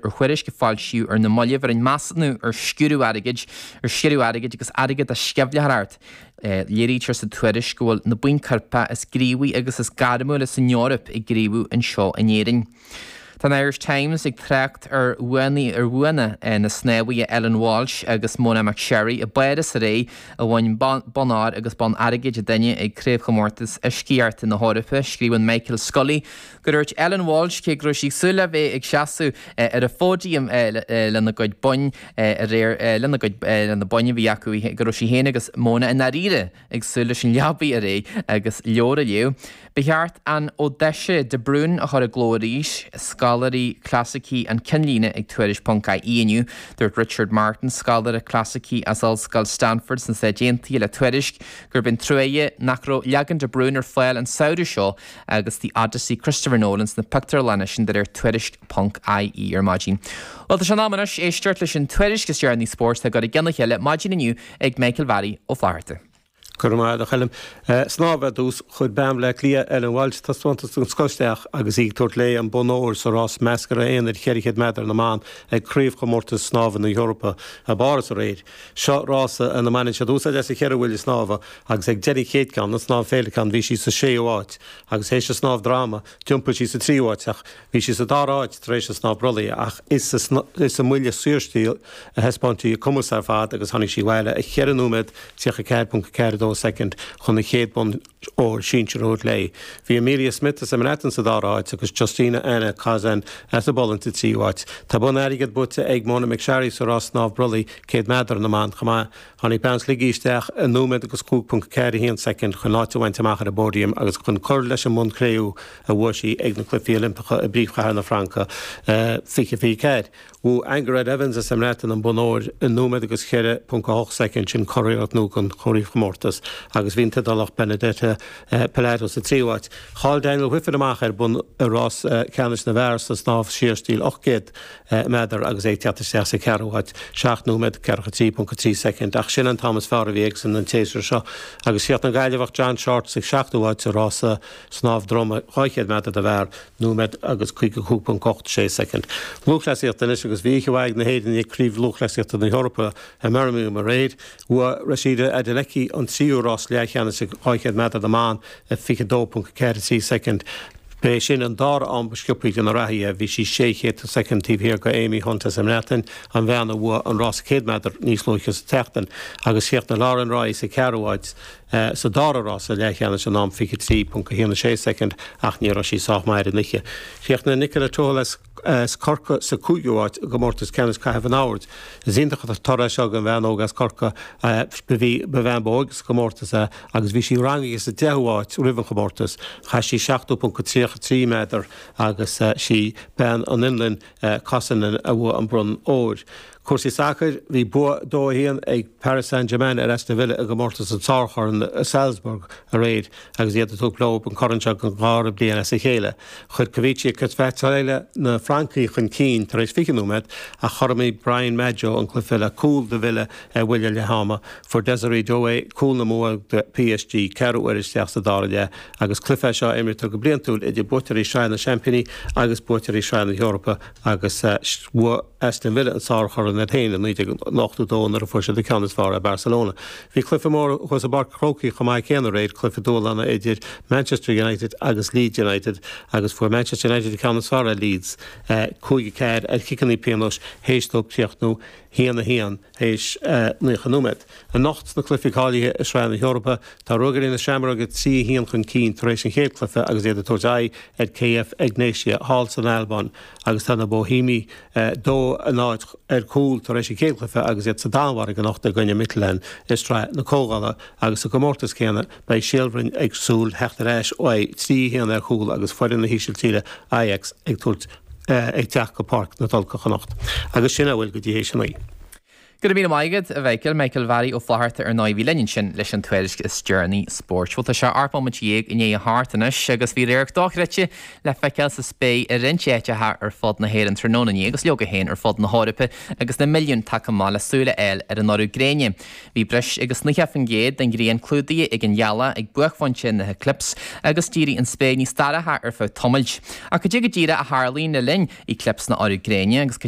ar thuairisc a foilsíodh ar na mallaibh ar an measúnú ar sciúradh airgid, ar sciúradh airgid agus airgeadú sceimhlitheoireacht. Léirítear sa tuairisc go bhfuil na buíon coirpeach is gníomhaí agus is gairmiúla san Eoraip ag gníomhú anseo in Éirinn. Tá an Irish Times ag trácht ar bhuanna ar bhuanna na snámhaithe Ellen Walsh agus Mona McSharry i bPáras aréir a bhain bonn óir agus bonn airgid an duine ag Craobhchomórtas Uiscíochta na hEorpa, scríobhann Michael Scully. Dúirt Ellen Walsh, cé go raibh sí ag súil le bheith ag seasamh ar an phóidiam lena gcuid boinn aréir, lena gcuid boinn a bhí acu, go raibh sí féin agus Mona i ndáiríre ag súil leis an leabaidh aréir agus leabhar a léamh. Ba cheart an Odaisé de Brún a chur i gcló arís, scoláirí clasaicí an cinnlíne ag Tuairisc ponc IE inniu. Dúirt Richard Martin, scoláire clasaicí as Ollscoil Stanford sna Stáit Aontaithe le Tuairisc gurb í an truaighe nach raibh leagan de Brún ar fáil an samhradh seo, agus The Odyssey Christopher Nolan sna pictiúrlanna, sin de réir Tuairisc ponc IE ar maidin. Bhuel, tá sé in am anois éisteacht leis an tuairisc is deireanaí spóirt atá á cur i gcionn a chéile maidin inniu ag Michael Bharry Ó Flatharta. Go raibh maith agat, a Choilm. Snámh ar dtús. Chuir bean Bhleá Cliath, Ellen Walsh, taispeántas den scoth isteach agus í ag tabhairt léi an bonn óir sa rás measctha aonair 400 meadar na mban ag Craobhchomórtais Snámha na hEorpa i bPáras aréir. Seo rása ina mbaineann siad úsáid as an cheithre bhuille snámha agus ag deireadh an chéad ceann, an Snámh Féileacán, bhí sí sa séú háit agus tar éis an Snámh Droma, d'iompaigh sí sa tríú háit ach bhí sí sa dara háit tar éis an Snámh Brollaigh ach is sa mbuille saorstíl a thaispeáin sí a cumas ar fad agus tháinig sí abhaile 4 nóiméad 34.42 soicind chun an chéad bhonn Óir sinsear a thabhairt léi, bhí Amelia Smith as an mBreatain sa dara háit agus Justina Anna Kozan as an bPolainn sa tríú háit. Tá bonn airgid buaite ag Mona McSharry sa rás snámh brollaigh 100 meadar na mban chomh maith. Tháinig bean Shligigh isteach i nóiméad agus 5.41 soicind chun áit a bhaint amach ar an bpóidiam agus chun cur leis an mbonn cré-umha a bhuaigh sí ag na Cluichí Oilimpeacha i bpríomhchathair na Fraince 2024. Bhuaigh Angharad Evans as an mBreatain an bonn óir i nóiméad agus 4.8 soicind, sin curiarracht nua don chraobhchomórtas, agus bhí an tIodálach Benedetta Pilato sa tríú háit. Chaill Daniel Wiffen amach ar bhonn i rás ceannais na bhfear sa snámh saorstíl 800 meadar agus é ag teacht isteach sa cheathrú háit, 7 nóiméad, 43.3 soicind, ach sin an t-am is fearr a bhí aige an séasúr seo. Agus chríochnaigh an Gaillimheach John Shortt sa seachtú háit sa rás snámh droma 200 meadar na bhfear. nóiméad agus 55.86 soicind. Lúthchleasaíocht Anois agus bhí oíche mhaith ag na hÉireannaigh ag Craobh Lúthchleasaíochta na hEorpa i mBirmingham aréir. Bhuaigh Rhasidat Adeleke an tríú rás leathcheannais sa 200 meadar na mban i 22.43 soicind. B'é sin an dara am ba sciopthaí de na reathaithe, bhí sí sé chéadú soicind taobh thiar de Amy Hunt as an mBreatain, an bhean a bhuaigh an rás 100 meadar níos luaithe sa tseachtain, agus chríochnaigh Lauren Roy sa gceathrú háit. sa dara rás sa leathcheannais in am 23.16 soicind ach ní raibh sí sách maith ar an oíche. Chríochnaigh Nicola Tuthill as Corcaigh sa 5ú áit i gcomórtas ceannais caitheamh an oird. Is iontach an toradh é seo don bhean óg as Corcaigh. Ba í an bhean ba óige sa gcomórtas í agus bhí sí rangaithe sa 10ú áit roimh an chomórtas. Chaith sí 70.33 méadar agus is í bean ón Fhionlainn, Kosonen, a bhuaigh an bronn óir. Cúrsaí sacair, Bhí bua 2 1 ag Paris Saint-Germain ar Aston Villa i gcomórtas an tSárchorn i Salzburg aréir agus iad ag tabhairt leo an corn seo den dhara bliain as a chéile. Chuir Khvicha Kvaratskhelia na Francaigh chun cinn tar éis 20 nóiméad ach chothromhaigh Brian Madjo an cluiche le cúl do Villa ar bhuille leath-ama. Fuair Désiré Doué cúl na mbua do PSG ceathrú uaire isteach sa dara leath agus cluiche é seo a imrítear go bliantúil idir buaiteoirí Shraith na Seaimpíní agus buaiteoirí Shraith na hEorpa agus bhuaigh Aston Villa an sárchorn iad féin i 1982 nuair a fuair siad an ceann is fearr ar Barcelona. Bhí cluiche mór thuas i bPáirc an Chrócaigh chomh maith céanna aréir, cluiche dúshláin idir Manchester United agus Leeds United agus fuair Manchester United an ceann is fearr ar Leeds, 5 4, ar chiceanna pionóis théis dóibh críochnú 1 1. théis 90 nóiméad. Anocht, sna cluichí cáilithe i Sraith na hEorpa, tá Ruagairí na Seamróige 3 1 chun cinn tar éis an chéad cluiche agus iad ag tabhairt aghaidh ar KF Egnatia thall san Albáin agus tá na Bohímigh 2 0 ar gcúl tar éis an chéad chluiche agus iad sa Danmhairg anocht i gcoinne Midtjylland i Sraith na Comhdhála agus sa gcomórtas céanna, beidh Síol Bhroin ag súil theacht ar ais uaidh 3 1 ar chúl agus foireann na hÍsiltíre, Ajax, ag tabhairt. ag teacht go Páirc na Tulcha anocht agus sin a bhfuil go dtí théis a naoi. Go raibh míle maith agat, a Mhichael. Michael Bharry Ó Fátharta ar ndóigh a bhí linn ansin leis an tuairisc is deireanaí spóirt. Bhuel tá sé ocht mbomaite déag i ndiaidh a hocht anois agus bhí radharc dochreidte le feiceáil sa spéir i roinnt áiteacha ar fud na hÉireann tráthnóna inné agus leoga féin ar fud na hEorpa agus na milliúin tagtha amach le súil a fháil ar an urú gréine. Bhí breis agus 90% den ghrian clúdaithe ag an ghealach ag buaicphointe na heiclipse, agus d'éirigh an spéir níos dorcha ar feadh tamaill. Ach cad é go díreach a tharlaíonn le linn eclipse nó urú gréine, agus cad